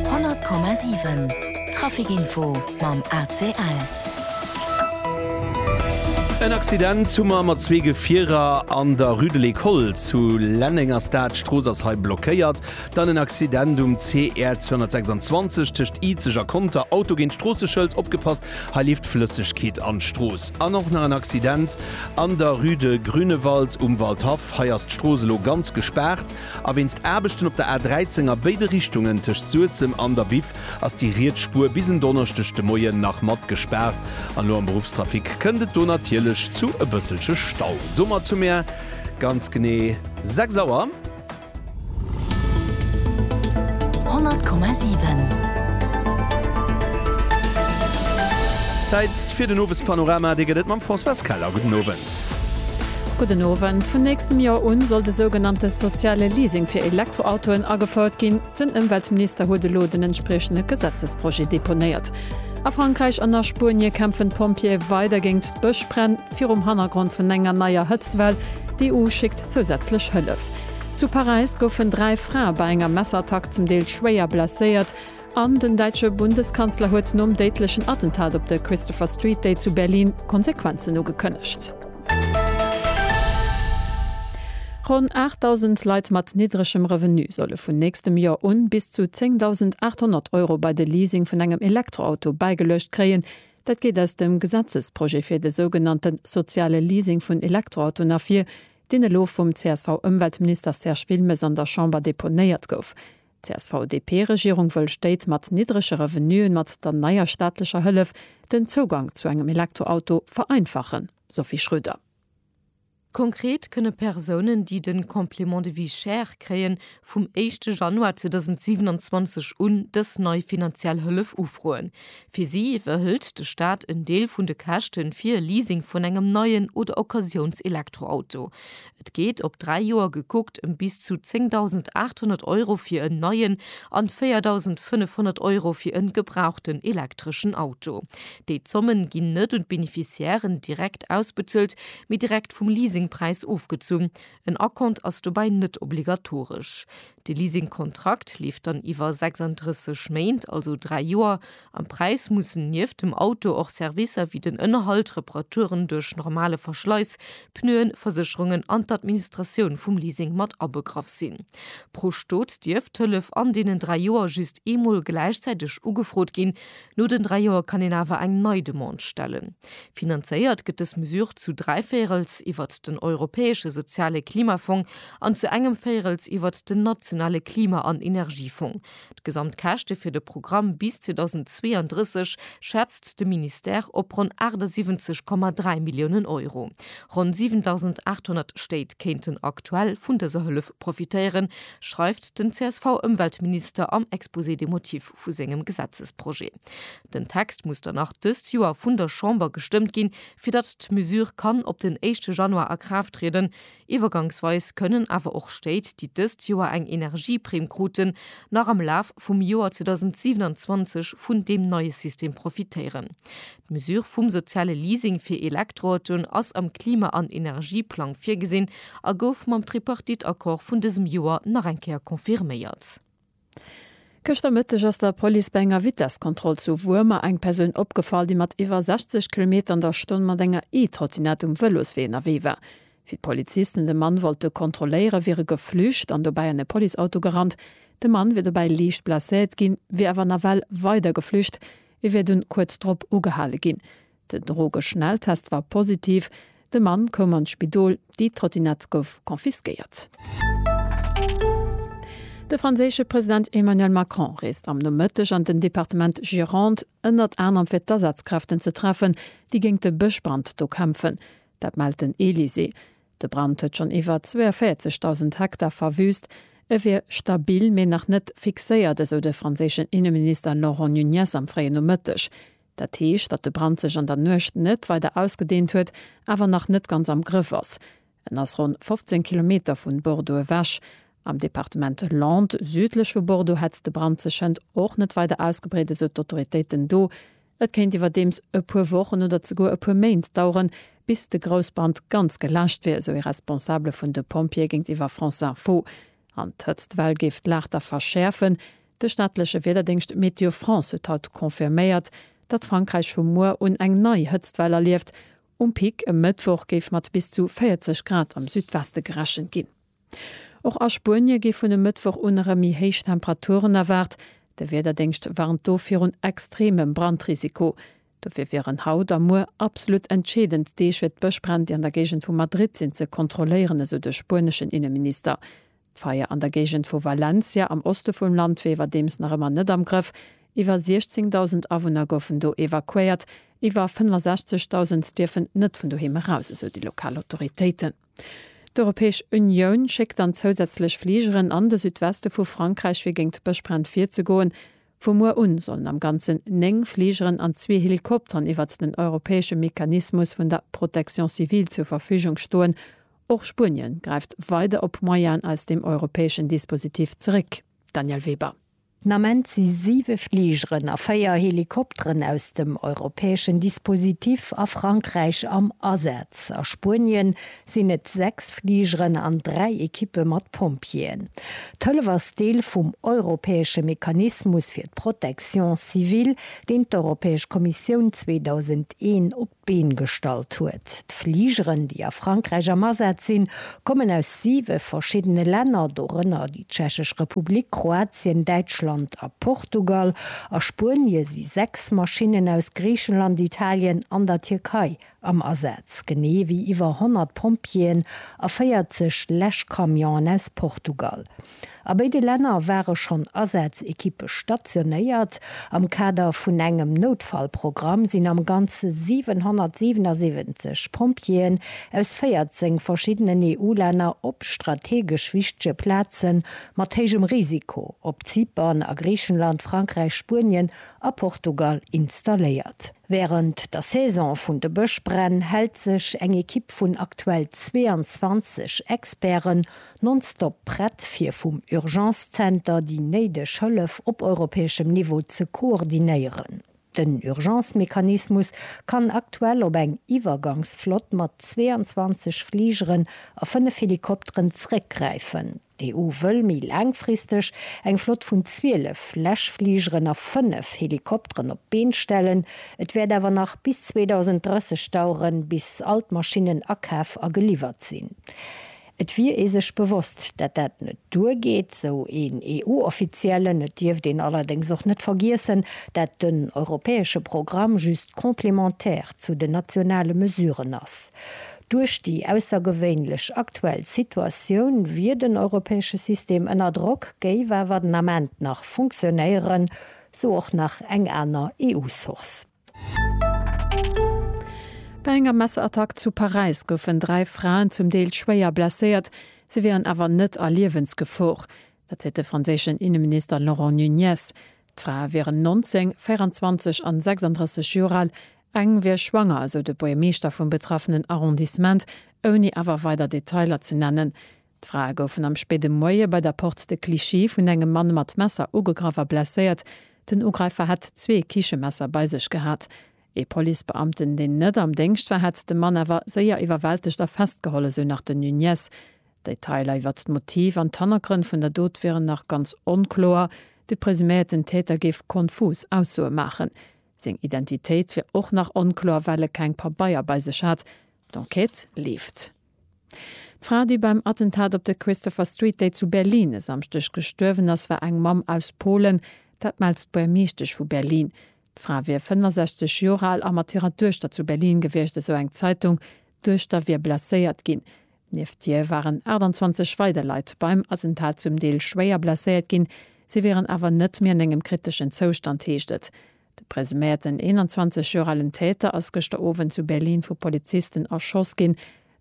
100,7 Traficinfo mam ACL. En Accident hu mer mat zwee Gefierer an der Rue de l'Ecole zu Lenneng ass dat. D'Strooss ass hei blockéiert. Dann en Accident um CR 226 tëscht Izeg a Conter. Auto géint Stroosseschëld, opgepasst, hei leeft Flëssegkeet an d'Strooss. An och nach en Accident an der Rue de Grünewald um Waldhaff. Hei ass d'Strooss elo ganz gespaart. A wéinst Aarbechten op der A 13 a béide Richtungen tëscht Suessem an der Biff ass déi riets Spuer bis en Donneschdeg de Moien nach mat gespaart. An elo am Beruffstrafic kënnt et do natierlech zu e bësselche Stau. Domat hu mir ganz genee 6 Auer. 100,7. Zäit fir den Owespanorama. Dee gëtt et mam Françoise Keller. Gudden Owend. Gudden Owend. Vun nächstem Joer un soll de sougenannte soziale Leasing fir Elektroautoen agefouert ginn. Den Ëmweltminister huet elo den entspriechende Gesetzesprojet deponéiert. A Frankräich an a Spuenie kämpfen d'Pompjeeë weider géint d'Bëschbränn, virum Hannergrond vun enger neier Hëtztwell. D'EU schéckt zousätzlech Hëllef. Zu Paräis goufen dräi Frae bei enger Messerattack zum Deel schwéier blesséiert. An den däitsche Bundeskanzler huet nom déidlechen Attentat op de Christopher Street Day zu Berlin Konsequenzen ugekënnegt. Ronn 8.000 Leit mat niddregem Revenu solle vun nächstem Joer un bis zu 10.800 Euro bei de Leasing vun engem Elektroauto bäigeluecht kréien. Dat geet aus dem Gesetzesprojet fir de sougenannte soziale Leasing vun Elektroautoen ervir, deen elo vum CSV-Ëmweltminister Serge Wilmes an der Chamber deponéiert gouf. D'CSV-DP-Regierung wëll Stéit mat niddrege Revenuen mat der neier staatlecher Hëllef den Zougang zu engem Elektroauto vereinfachen, Sophie Schröder. Konkret kënne Persounen, déi de Complément de vie chère kréien, vum éischte Januar 2027 un dës nei finanziell Hëllef ufroen. Fir si iwwerhëlt de Staat en Deel vun de Käschte fir e Leasing vun engem neien oder Occasiouns-Elektroauto. Et geet op dräi Joer gekuckt ëm bis zu 10.800 Euro fir en neien an 4.500 Euro fir en gebrauchten elektreschen Auto. Déi Zommen ginn net un d'Beneficiairen direkt ausbezuelt, mee direkt vum Leasingpräis ofgezunn. En Acompte ass dobäi net obligatoresch. De Leasingkontrakt leeft dann iwwer 36 Méint, also dräi Joer, Am Präis mussen nieft dem Auto och Servicer wéi den Ënnerhalt, Reparaturen duerch normale Verschleiss, Pneuen, Versécherungen an d'Administratioun vum Leasing mat abegraff sinn. Pro Stot dierf d'Hëllef an deenen dräi Joer just eemol gläichzäiteg ugefrot ginn. No den dräi Joer kann een awer eng nei Demande stellen. Finanzéiert gëtt dës Mesure zu dräi Véierels iwwert den Europäesche Soziale Klimafong an zu engem Véierels iwwert den Nationale Klima an Energiefong. D'Gesamtkäschte fir de Programm bis 2032 schätzt de Ministère op ronn 78,3 Milliounen Euro. Ronn 7.800 Stéit kéinten aktuell vun dëser Hëllef profitéieren, schreift den CSV-Ëmweltminister am Exposé des motifs vu sengem Gesetzesprojet. Den Text muss dann nach dëst Joer vun der Chamber gestëmmt ginn, fir datt d'Mesure kann op den éischte Januar a Kraaft trieden. Iwwergangsweis kënnen awer och Stéit, déi dëst Joer eng Energieprimm kruten, nach am Laf vum Joer 2027 vun deem neie System profitéieren. D'Mesure vum soziale Leasing fir Elektroautoen ass am Klima an Energieplang virgesinn a gouf mam Tripartite-Accord vun dësem Joer nach eng Kéier confirméiert. Gëschter Mëtteg ass der Police bei enger Vitesskontroll zu Wuermer eng Persoun opgefall, déi mat iwwer 60 Kilometer an der Stonn mat enger E-Trottinette um Vëloswee ënnerwee war. Wéi d'Polizisten de Mann wollte kontrolléiere wier e geflücht an dobäi an e Policeauto gerannt. De Mann wier dobäi liicht blesséiert ginn, wier awer nawell weider geflücht. E wier dunn kuerz drop ugehale ginn. Den Drogeschnelltest war positiv, de Mann koum an d'Spidol, déi Trottinett gouf confisquéiert. De franséische President Emmanuel Macron reest am Nomëtteg an den Departement Gironde, ënnert anerem fir d'Asazkräften ze treffen, déi géint de Bëschbrand do kämpfen. Dat mellt den Elysée. De Brand huet schonn iwwer 42.000 Hektar verwüüst. E wier stabil, mee nach net fixéiert, esou de franséischen Inneminister Laurent Nunez am fréien Nomëtteg. Dat heescht, datt de Brand sech an der Nuecht net weider ausgedehnt huet, awer nach net ganz am Grëff ass. En ass ronn 15 Kilometer vun Bordeaux ewech. Am Departement Landes, südlech vu Bordeaux, hätt de Brand sech hënt och net weider ausgebreet, esou d'Autoritéiten do. Et kéint iwwerdeems e puer Wochen oder zeguer e puer Méint daueren, bis de Groussbrand ganz geläscht wier, esou ee Responsabele vun de Pompjeeë géintiwwer France Info. An d'Hëtztwell géif d'Lag da verschäerfen. De staatleche Wiederdéngscht Météo France huet haut confirméiert, datt Frankräich vu muer un eng nei Hëtztwell erlieft. Um Pic e Mëttwoch géif mat bis zu 40 Grad am Südweste gerechent ginn. Och a Spuenie gi vun e Mëttwoch un erëm méi héich Temperaturen erwaart. De Wiederdéngscht warnt do virun extremem Brandrisiko. Dofir wieren haut a muer absolut entscheedend Deeg, fir d'Bëschbränn, déi an der Géigend vu Madrid sinn, ze kontrolléieren, esou de spueneschen Inneminister. D'Feier an der Géigend vu Valencia am Oste vum Land wier iwwerdeems nach ëmmer net am Grëff. Iwwer 16.000 Awunner goufen do evakuéiert. Iwwer 65.000 dierfen net vun doheem eraus, esou déi lokal Autoritéiten. D'Europäesch Unioun schéckt dann zousätzlech Fligeren an de Südweste vu Frankräich, fir géint d'Bëschbränn virzegoen. Vu muer un sollen am Ganzen 9 Fligeren an zwee Helikopteren iwwert den europäesche Mechanismus vun der Protection civile zur Verfügung stoen. Och Spuenien gräift weider op Moyenen aus dem europäeschen Dispositif zeréck, Danièle Weber. Den Ament si 7 Fligeren a 4 Helikopteren aus dem europäeschen Dispositif a Frankräich am Asaz. A Spuenien sinn et 6 Fligeren an 3 Ekippe mat Pompjeeën. D'Hëllef ass Deel vum europäesche Mechanismus fir d'Protection civile, deen d'Europäesch Kommissioun 2001 op d'Been gestallt huet. D'Fligeren, déi a Frankräich am Asaz sinn, kommen aus siwe verschiddene Länner, dorënner déi Tschechesch Republik, Kroatien, Däitschland a Portugal. A Spuenie si sechs Maschinnen aus Griichenland, Italien an der Tierkei am Asaz, genee ewéi iwwer 100 Pompjeeën a 40 Läschcamionen aus Portugal. A béide Länner ware schonn Asaz-Ekippe stationéiert. Am Kader vun engem Noutfallprogramm sinn am Ganze 777 Pompjeeën aus 14 verschiddenen EU-Länner op strategesch wichtege Plaze mat héijem Risiko op Zypern, a Griichenland, Frankräich, Spuenien a Portugal installéiert. Wärend der Saison vun de Bëschbränn hält sech eng Ekipp vun aktuell 22 Experten Nonstop prett fir vum Urgence Center déi néideg Hëllef op europäeschem Niveau ze koordinéieren. Den Urgence Mechanismus kann aktuell op eng Iwwergangsflott mat 22 Fligeren a 5 Helikopteren zréckgräifen. D'EU wëll méi laangfristeg eng Flott vun 12 Läschfligeren a 5 Helikopteren op d'Been stellen. Et wäert awer nach bis 2030 daueren, bis all d'Maschinnen akaf a geliwwert sinn. Et wier ee sech bewosst, dat dat net duer geet, sou een EU-Offiziellen. Et dierft een allerdéngs och net vergiessen, dat den europäesche Programm just complémentaire zu den nationale Mesuren ass. Duerch déi aussergewéinlech aktuell Situatioun wier den europäesche System ënner Drock, géif awer den Ament nach funktionéieren, sou och nach eng aner EU-Source. Bei enger Messerattack zu Paräis goufen dräi Fraen zum Deel schwéier blesséiert, se wieren awer net a Liewensgefor. Dat seet de franséischen Inneminister Laurent Nunez. D'Frae wieren 19, 24 an 36 Joer al, eng wier schwanger, esou de Buergermeeschter vum betraffenen Arrondissement, ouni awer weider Detailer ze nennen. D'Frae goufen am spéide Moie bei der Porte de Clichy vun engem Mann mat Messer ugegraff a blesséiert. Den Ugräifer hätt zwee Kichemesser bei sech gehat. Ee Policebeamten, deen net am Déngscht war, hätt de Mann awer séier iwwerwältegt a festgeholl, esou nach den Nuñez. D'Detailer iwwert d'Motiv an d'Hannergrënn vun der Dot wieren nach ganz onkloer. De presuméierten Täter géif konfus Aussoe maachen. Seng Identitéit wier och nach onkloer, well e keng Pabeier bei sech hat. D'Enquête leeft. D'Fra, déi beim Attentat op de Christopher Street Day zu Berlin e Samschdeg gestuerwen ass, war eng Mamm aus Polen. Dat mellt d'Buermeeschtesch vu Berlin. D'Fra wier 65 Joer al a mat hirer Duechter zu Berlin gewiescht, esou eng Zeitung. D'Duechter wier blesséiert ginn. Nieft hir waren 28 weider Leit beim Attentat zum Deel schwéier blesséiert ginn. Si wieren awer net méi an engem kriteschen Zoustand, heescht et. De presuméierten 21 Joer alen Täter ass gëschter Owend zu Berlin vu Polizisten erschoss ginn.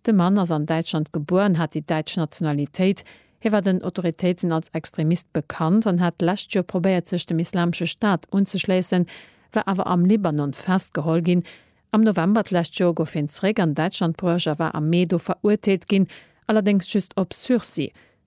De Mann ass an Däitschland gebuer an hat déi däitsch Nationalitéit. Hie war den Autoritéiten als Extremist bekannt an hat d'lescht Joer probéiert sech dem Islamesche Staat unzeschléissen, war awer am Libanon festgeholl ginn. Am November d'lescht Joer gouf hien zeréck an Däitschland bruecht a war am Mee do verurteelt ginn, allerdéngs just op Sursis.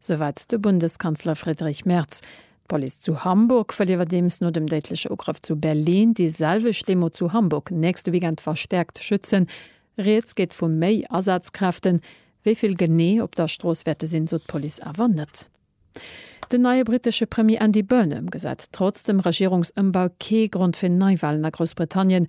Souwäit de Bundeskanzler Friedrich Merz. D'Police zu Hamburg wëll iwwerdeems no dem déidleche Ugrëff zu Berlin déi selwecht Demo zu Hamburg nächste Weekend verstäerkt schützen. Rieds geet vu méi Asazkräften. Wéi vill genee op der Strooss wäerte sinn, sot d'Police awer net. Den neie brittesche Premier Andy Burnham gesäit trotz dem Regierungsëmbau kee Grond fir Neiwalen a Groussbritannien.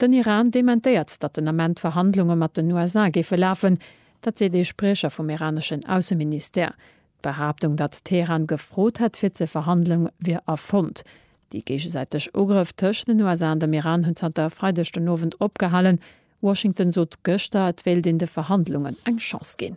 Den Iran dementéiert, datt den Ament d'Verhandlunge mat den USA géife lafen. Dat seet ee Spriecher vum iraneschen Ausseministère. D'Behaaptung, datt Teheran gefrot hätt fir ze verhandelen, wier erfonnt. Déi géigesäiteg Ugrëff tëscht den USA an dem Iran hunn zanter e Freideg den Owend opgehalen. Washington sot gëschter, et wéilt een de Verhandlungen eng Chance ginn.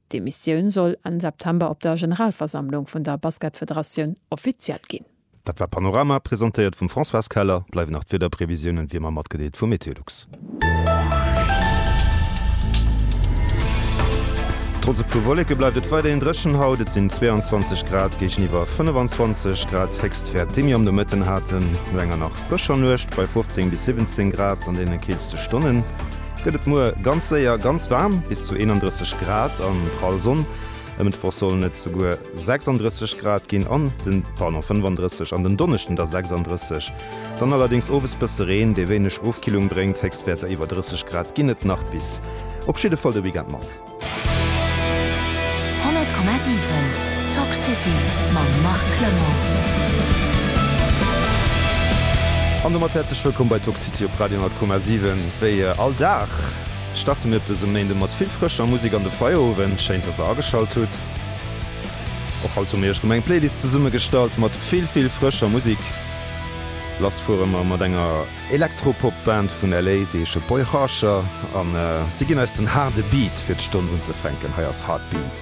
D'Demissioun soll Enn September op der Generalversammlung vun der Basketfederatioun offiziell ginn. Dat war Panorama, presentéiert vum Françoise Keller. Bleiwen nach d'Wiederprevisiounen wéi ëmmer matgedeelt vu Meteolux. Trotz e puer Wolleke bleift et weiderhin dréchen haut, et sinn 22 Grad géigeniwwer 25 Grad Héchstwäert, déi mir am Nomëtten haten. No enger nach frëscher Nuecht bei 15 bis 17 Grad an deene keelste Stonnen, gëtt et muer ganz séier ganz waarm, bis zu 31 Grad an prall Sonn. E Mëttwoch sollen et souguer 36 Grad ginn an de, pardon, 35 an den Donneschden da 36. Dann allerdéngs owes bësse Reen, dee wéineg Ofkillung bréngt. Héchstwäerter iwwer 30 Grad ginn et nach bis op jidde Fall de Weekend mat. 100,7 Talk City mam Marc Clement. An domat häerzlech wëllkomm bei Talk City op Radio 100,7. Wéi all Dag starte mir op dësem Méinde mat vill frëscher Musek an de Feierowend. Schéin, dass der ageschalt hutt. Och haut hu mir iech rëm eng Playlist zesummegestallt mat vill, vill frëscher Musek. Lass fuere mer mat enger Elektropop-Band vun LA si Age of Boy Harsher an si ginn eis den haarde Beat fir d'Stonn unzefänken. Hei ass Heartbeat.